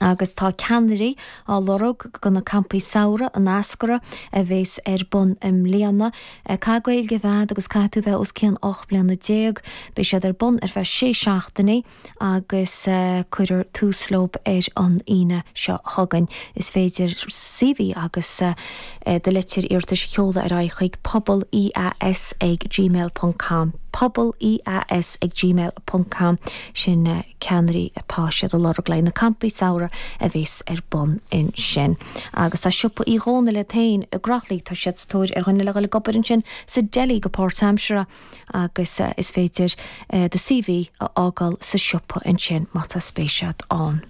agus tá ceannairí á lorg do na campaí samhraidh, an Eascarrach, a bheas ar bun i mbliana. Caithfidh Gaeilge a bheith ad agus caithfidh tú bheith os cionn 18 mbliana. Beidh siad ar bun ar feadh sé seachtainí agus cuirfear tús leo ar an Aoine seo chugainn. Is féidir CV agus do litir iarratais a sheoladh ar aghaidh chuig, pobal EAS ag gmail ponc com, pobal EAS ag gmail ponc com. sin ceannairí atá siad a lorg le na campaí samhraidh a bhéas ar bun ansin agus tá siopa Uí Dhónaill iad féin i gCroithlí tá siad sa tóir ar dhuine le dhul ag obair ansin sa deli go páirtaimseartha agus is féidir do CV a fhágáil sa siopa ansin má tá spéis ad ann.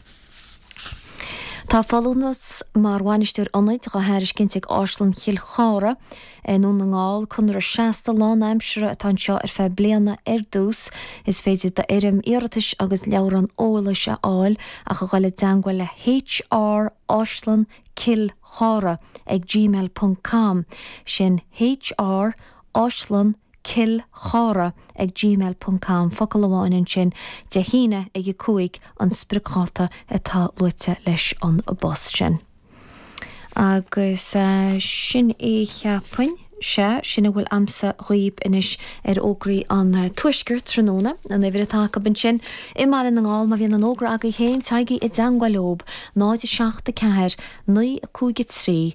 Tá folúntas mar Bhainisteoir Ionaid á thairiscint ag Áislann Chill Chartha i nDún na nGall. Conradh seasta lánaimseartha atá anseo ar feadh bliana ar dtús. Is féidir foirm iarratais agus leabhrán eolais a fháil ach a ghoil i dteangmhail le HR Áislann Cill Chartha ag gmail ponc com. Sin HR Áislann cill chartha ag gmail ponc com, focal amháin ansin, Dé hAoine ag a cúig an spriocdháta atá luaite leis an bpost sin. Agus sin é cheapfainn. Sea, sin a bhfuil a'msa dhaoib anois ar fhógraí an Tuaiscirt tráthnóna. An uimhir atá acu ansin i mBaile na nGall, má bhíonn aon fhógra agaibh féin, téigí i dteangmháil leob, 0 7 4 9 5 3